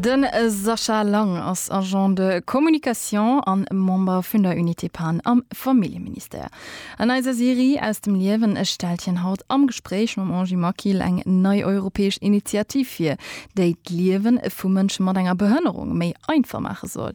De Sascha Lang ass Agent de communication a Member vun der Unité Pan am Familljeministère. An eiser Serie Aus dem Liewen stellt hien haut am Gespréich mam Angie Maquil eng nei europäesch Initiativ vir, déi d'Liewe vu Mënsche mat enger Behënnerung méi einfach maache soll.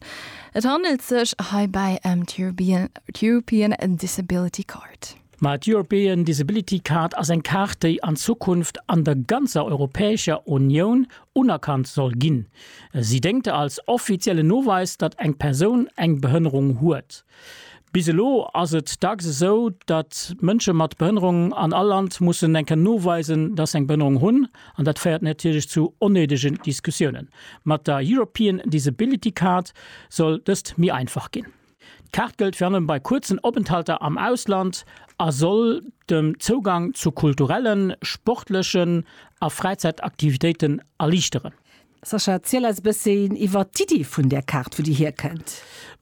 Et handelt sech heibäi ëm d'European Disability Card. Ma d'European Disability Card ass eng Kaart, déi an Zukunft an der ganzer Europäescher Unioun unerkannt soll ginn. Si déngt als offiziellen Noweis, datt eng Persoun eng Behënnerung huet. Bis elo ass et dacks esou, datt Mënsche mat Behënnerung an all Land mussen eng Kéier noweisen, datt se eng Behënnerung hunn. An dat féiert natierlech zu onnéidegen Diskussiounen. Mat der European Disability Card soll dëst méi einfach ginn. D'Kaart gëllt virun allem bei kuerzen Openthalter am Ausland a soll den Zougang zu kulturellen, sportlechen a Fräizäitaktivitéiten erliichteren. Sascha, erziel eis e bësschen iwwert d'Iddi vun där Kaart, wou déi hierkënnt.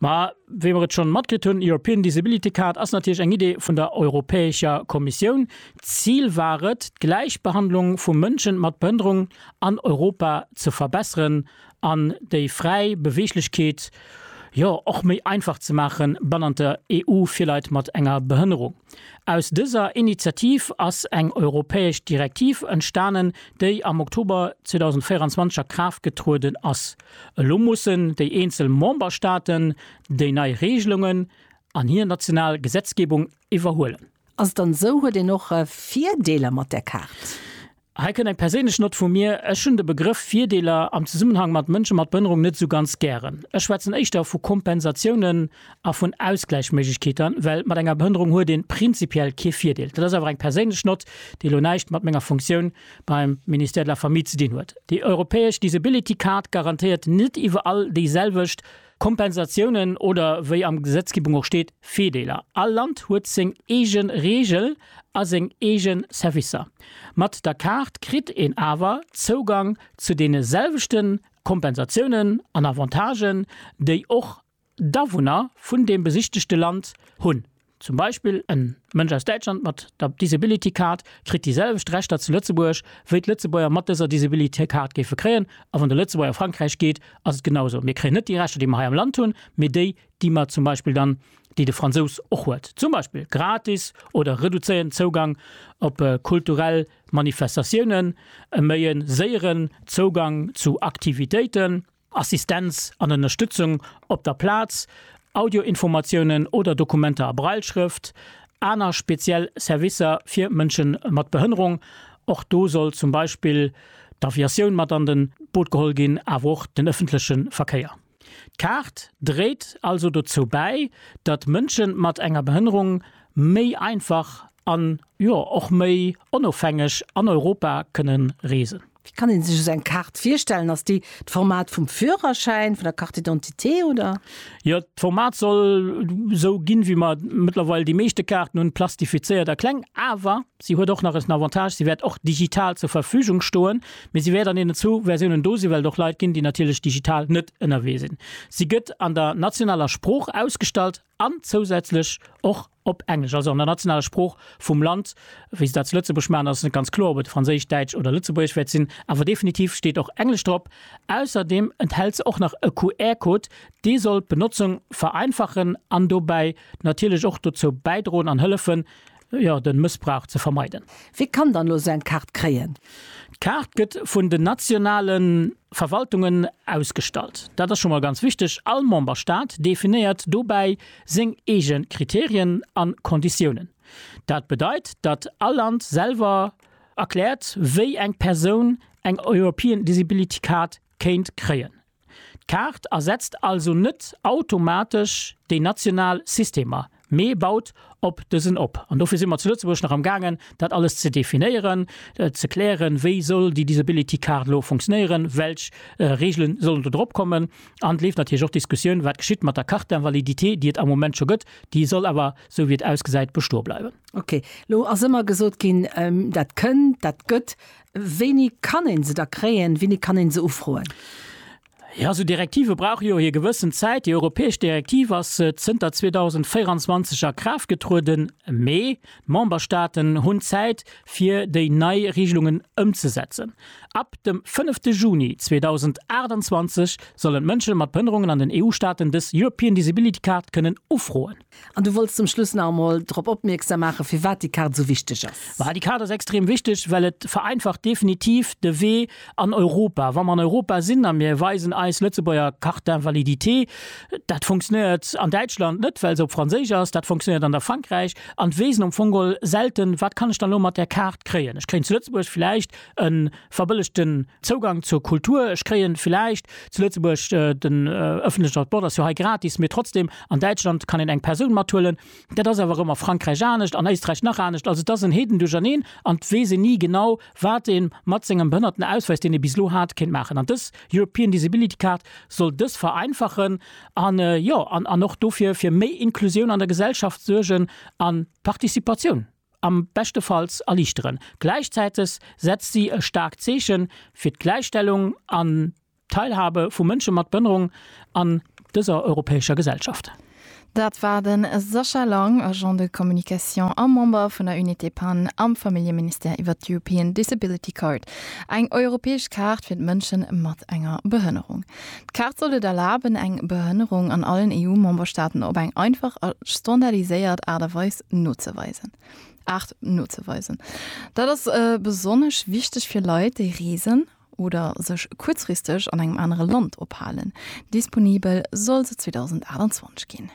Ma wéi mer et schonn matkritt hunn, European Disability Card ass natierlech eng Idee vun der Europäescher Kommissioun. D'Zil war et, d'Gläichbehandlung vu Mënsche mat Behënnerung an Europa ze verbesseren an déi fräi Beweeglechkeet jo och méi einfach ze maache bannent der EU fir Leit mat enger Behënnerung. Aus dëser Initiativ ass eng europäesch Direktiv entstanen, déi am Oktober 2024 a Kraaft getrueden ass. Elo mussen déi eenzel Memberstaaten déi nei Reegelungen an hir national Gesetzgebung iwwerhuelen. Ass et dann esou, huet een och Virdeeler mat där Kaart? Hei kënnt eng perséinlech Nott vu mir, Ech hunn de Begrëff Virdeeler am Zesummenhang mat Mënsche mat Behënnerung net esou ganz gären. Ech schwätzen éischter vu Kompensatiounen a vun Ausgläichméiglechkeeter, well mat enger Behënnerung huet een prinzipiell kee Virdeel. Dat ass awer eng perséinlech Nott, déi elo näischt mat menger Funktioun beim Ministère de la Famille ze dinn huet. Déi europäesch Disability Card garantéiert net iwwerall déiselwecht Kompensatiounen oder, wéi am Gesetzgebung och steet, Virdeeler. All Land huet seng eege Reegel a seng eege Servicer. Mat der Kaart kritt een awer Zougang zu deene selwechte Kompensatiounen an Avantagen, déi och d'Awunner vun deem besichtegte Land hunn. Zum Beispill en Mënsch aus Däitschland mat der Disability Card kritt déi selwecht Rechter zu Lëtzebuerg wéi d'Lëtzebuerger mat dëser Disability Card géife kréien. A wann de Lëtzebuerger a Frankräich geet, ass et genau esou. Mir kréien net déi Rechter déi mer hei am Land hunn, mee déi déi mer zum Beispill dann, déi de Fransous och huet, zum Beispill gratis oder reduzéierten Zougang op kulturell Manifestatiounen, e méi e séieren Zougang zu Aktivitéiten, Assistenz an Ënnerstützung op der Plaz, Audioinformatiounen oder Dokumenter a Brailleschrëft, aner speziell Servicer fir Mënsche mat Behënnerung, och do soll zum Beispill d'Aviatioun mat an den Boot geholl ginn, awer och den ëffentleche Verkéier. D'Kaart dréit also dozou bäi, datt Mënsche mat enger Behënnerung méi einfach an, jo, och méi onofhängeg an Europa kënnen reesen. Wéi kann een sech esou eng Kaart virstellen? Ass déi d'Format vum Führerschäin, vun der Carte d'identité oder? Jo, d'Format soll esou ginn, wéi mer mëttlerweil déi meeschte Kaarten hunn, plastifizéiert a kleng. Awer si huet och nach en Avantage, si wäert och digital zur Verfügung stoen, mee si wäert an deenen zwou Versiounen do sinn, well et och Leit ginn, déi natierlech digital net ënnerwee sinn. Si gëtt an der nationaler Sprooch ausgestallt. an zousätzlech och op Englesch, also an der nationaler Sprooch vum Land, wéi se dat zu Lëtzebuerg maachen, ass net ganz kloer, ob et Franséisch, Däitsch oder Lëtzebuergesch wäert sinn, awer definitiv steet och Englesch drop. Ausserdeem enthält se och nach e QR-Code, dee soll d'Benotzung vereinfachen an dobäi natierlech och dozou bäidroen an hëllefen, jo, den Mëssbrauch ze vermeiden. Wie kann dann elo seng Kaart kréien? D'Kaart gëtt vun den nationalen Verwaltungen ausgestallt. Dat ass scho mol ganz wichteg. All Memberstaat definéiert dobäi seng eege Kriterien an Konditiounen. Dat bedeit, datt all Land selwer erkläert, wéi eng Persoun eng European Disability Card kéint kréien. D'Kaart ersetzt also net automatesch déi national Systemer, mee baut op dësen op. An dofir si mer zu Lëtzebuerg nach am gaangen, dat alles ze definéieren, ze klären, wéi soll déi Disability Card elo funktionéieren, welch Regelen sollen do drop kommen. An et leeft natierlech och d'Diskussioun, wat geschitt mat der Carte d'invalidité, déi et am Moment scho gëtt, déi soll awer, sou wéi et ausgesäit, bestoe bleiwen. Ok, elo ass ëmmer gesot ginn, dat kënn, dat gëtt. Wéini kann een se da kréien? Wéini kann een se ufroen? Jo, esou Direktive brauche jo hir gewëssen Zäit. Déi europäesch Direktiv ass zënter 2024 a Kraaft getrueden, mee d'Memberstaaten hunn Zäit, fir déi nei Reegelungen ëmzesetzen. Ab dem fënnefte Juni 2028 sollen d'Mënsche mat Behënnerungen an den EU-Staaten dës European Disability Card kënnen ufroen. An du wolls zum Schluss nach emol drop opmierksam maachen, firwat déi Kaart esou wichteg ass. Ma déi Kaart ass extrem wichteg, well et vereinfacht definitiv de Wee an Europa. Wa mer an Europa sinn a mir weisen eis Lëtzebuerger Carte d'invalidité, dat funktionéiert an Däitschland net, well se op Franséisch ass, dat funktionéiert an der Frankräich an d'Weesen um Fong geholl selten, Wat kann ech dann elo mat där Kaart kréien? Ech kréien zu Lëtzebuerg vläicht e verbëllegten Zougang zur Kultur, ech kréien villäicht zu Lëtzebuerg den ëffentlechen Transport ass jo hei gratis, mee trotzdem an Däitschland kann een eng Persoun mathuelen, dat ass awer erëm a Frankräich anescht, an Éisträich nach anescht, also et ass en Heedendurcherneen an et weess een ni genau wat ee mat sengem Behënnertenausweis, deen ee bis elo hat, kéint maachen. An dës European Disability Card soll dës vereinfachen an, jo, an och dofir fir méi Inklusioun an der Gesellschaft suergen a Participatioun. am beschtefalls erliichteren. Gläichzäiteg setzt si e staarkt Zeeche fir d'Gläichstellung an d'Teilhabe vu Mënsche mat Behënnerung an dëser europäescher Gesellschaft. Dat war de Sascha Lang, Agent de communication a Member vun der Unité Pan am Familljeministère iwwer d'European Disability Card, eng europäesch Kaart fir d'Mënsche mat enger Behënnerung. D'Kaart soll et erlaben, eng Behënnerung an allen EU-Memberstaaten op eng einfach a standardiséiert Aart a Weis nozeweisen. Art nozeweisen. Dat ass besonnesch wichteg fir Leit, déi reesen oder sech kuerzfristeg an engem anere Land ophalen. Disponibel soll se 2028 ginn.